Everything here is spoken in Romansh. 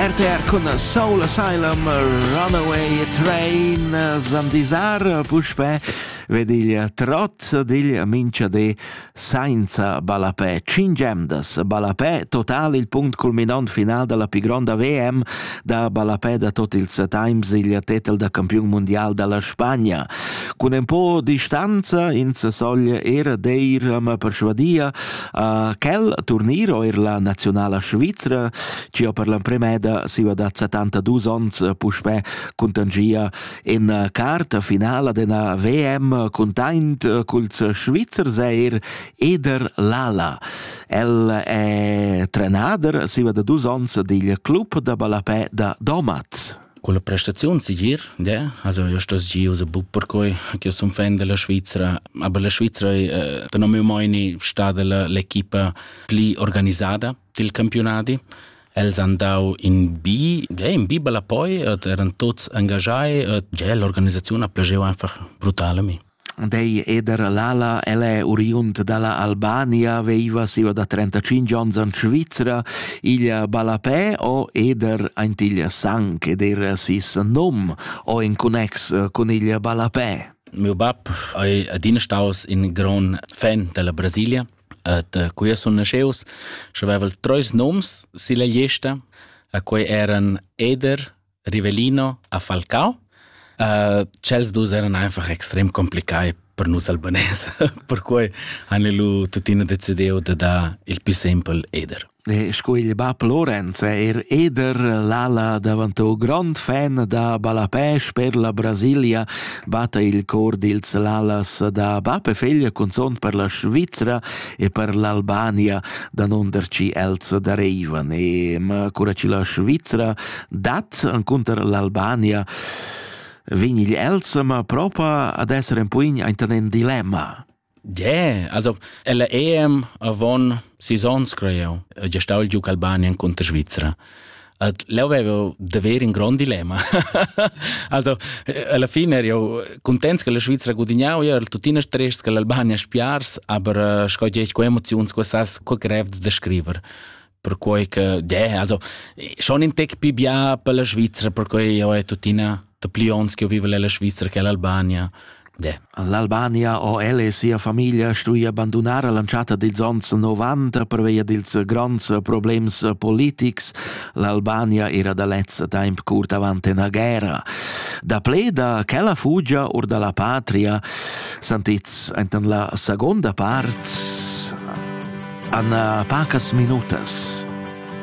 RTR cun Soul Asylum, Runaway Train, Zandisar, puspè ved il trot dil mincha de sainza ballapè. Cin gemdas, ballapè total il punct culminant final della più gronda VM da ballapè da tot ils times il titel da campion mondial della Spagna. Con un po distanza ins sogl er deir ma persuadia Uh, quel turnir eir la nazionala svizra, ci ho per l'empremeda siva dat 72 ons puspè contangia in carta finala d'ena VM containt culs Svizzers eir Eder Lala. El è trenader siva da dus ons digl club da ballapè da Domat. Culla prestaziun segir, yeah. Also io stoss gio se buc perquei ch'io sun fan della Svizra, aber la Svizra ei tenor miu meini stada l'equipa pli organisada dil campionadi. Els han dau in bi, yeah, in bi bel appoi, eran tuts engagiai, e yeah, l'organisaziun ha plageu einfach brutal a mi. Dei eder l'ala, el è oriund da la Albania, veiva siva da trentacinch ons in Svizra. Igl ballapè ò eder aint igl sang ed eir sis nom ò in connex cun igl ballapè. Miu bab ei adina staus in gran fan della Brasilia et uh, qui sun nasceus și aveval treis noms silla gliesta, a quei eran Eder, Rivelino a Falcao. Uh, chels dus eran einfach extrem complicai per nus albanese, perquei han lu tuttina decidiu de dar il più simpel Eder. E sco il bab Lorenz è er Eder l'ala davanti o grand fan da Balapes per la Brasilia batta il cor dils l'alas da bab e figlia cunzont per la Svizzera e per l'Albania da non der ci els dareivan e ma cura ci la Svizzera dat cunter l'Albania vegn igl Elsema propa ad esser en puin aintan en dilemma. Yeah, also ella EM avon sisons creo, gestau il giuc Albanian contro Svizzera. At leu avevo d'haver in grond dilemma. also alla fine ero contents che la Svizzera gudignau, ero tuttina stress che l'Albania spiars, aber sco dici co emoziuns quest'as co grev da scriver. perquei che de, also schon in tec più bia per la Svizzera, perquei ho è tuttina da pli ons che vive la Svizzera che l'Albania. De. L'Albania o el e sia famiglia stuia abbandonar l'anchata dils ons 90 per via dils gronds problems politics. L'Albania era da lez temp curt avant una guerra. Da ple da quella fugia or dalla patria Santez enten la seconda part Anna pacas minutas